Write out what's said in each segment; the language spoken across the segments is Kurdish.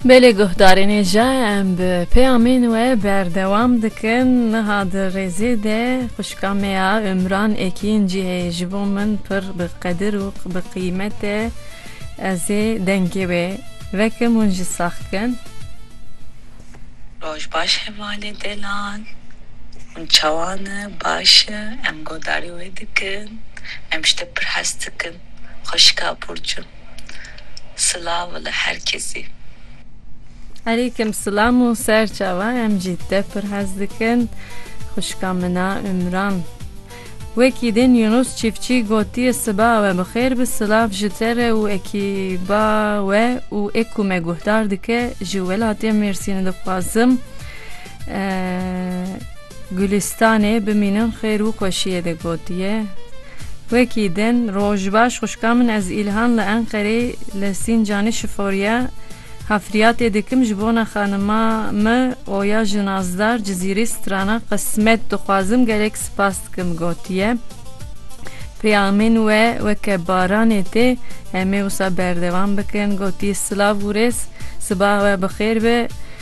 Belê guhdarên ê jî em bi peyamên we berdewam dikin. Niha di rêzê de xwişka me ya Umran Ekîn jî heye ji bo min pir bi qedir û bi qîmet e. Ez ê dengê wê vekim hûn jî sax bikin. Roj baş hevalê delan hûn çawa ne baş e em godarî wê dikin em ji te pir hes dikin xweşika Burcu. Silav li her kesî. Elîkim silam û ser çava em jî te pir hez dikin xwişka mina Umran. Wekî din Yunus Çîfçî gotiye siba we bi xêr bi silav ji te re û ekîba we û ê ku me guhdar dike ji welatê Mêrsînê dixwazim Gulîstanê bimînin xêr û xweşiyê de gotiye, Wekî din roj baş xwişka min ez Îlhan li Enqereyê li Sîncanê şiforiya hafriyatê dikim ji bona xanima me Oya ji Nazdar Cizîrê strana qismet dixwazim gelek spas dikim gotiye, Peyamên we weke baranê tê em ê wisa berdewam bikin gotiye, Silav û rêz sibaha we bi xêr be.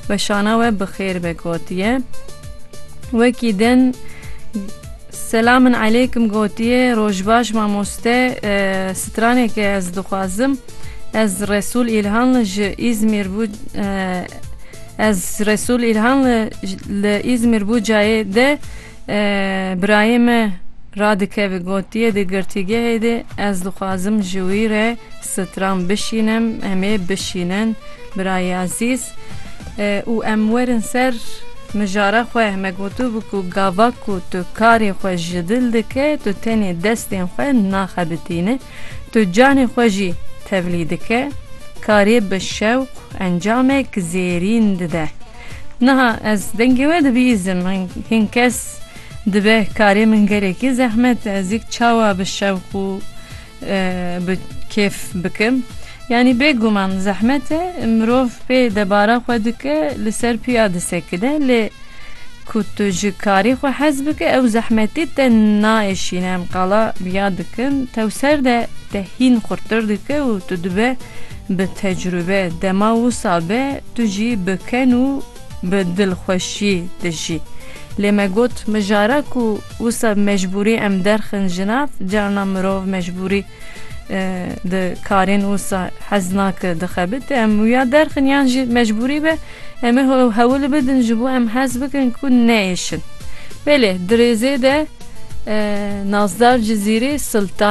Weşana we bi xêr be gotiye. Wekî din Selamin elêkim gotiye rojbaş mamoste straneke ez dixwazim ez Resul İlhanlı ji İzmir bu ez Resul İlhanlı li İzmir bu cayê de Birayê me radikeve gotiye di girtîgehê de ez dixwazim ji wî re stran bişînim, em ê bişînin birayê ezîz û em werin ser mijara xwe. Me gotibû ku gava ku tu karê xwe ji dil dike tu tenê destên xwe naxebitîne, tu canê xwe jî tevlî dike, karê bi şewq encameke zêrîn dide. Niha ez dengê we dibihîzim. Hin kes dibe karê min gelekî zehmet e. Ez yek çawa bi şewq û bi kêf bikim. Yanî bêguman zehmet e. Mirov pê debara xwe dike li ser piya disekine. Lê ku tu ji karê xwe hez bike ew zehmetî te naêşîne. Em qala biya dikin tewser de te hîn xurttir dike û tu dibe Bi tecrube dema wisa be tu jî bi ken û bi dilxweşî dijî. Lê me got mijara ku wisa bi mecbûrî em derxin ji nav, carna mirov mecbûrî di karên wisa hez nake dixebite. Em wiya derxin yan jî mecbûrî be em ê hewil bidin ji bo em hez bikin ku neyêşin. Belê di rêzê de Nazdar Cizîrî, Sultan.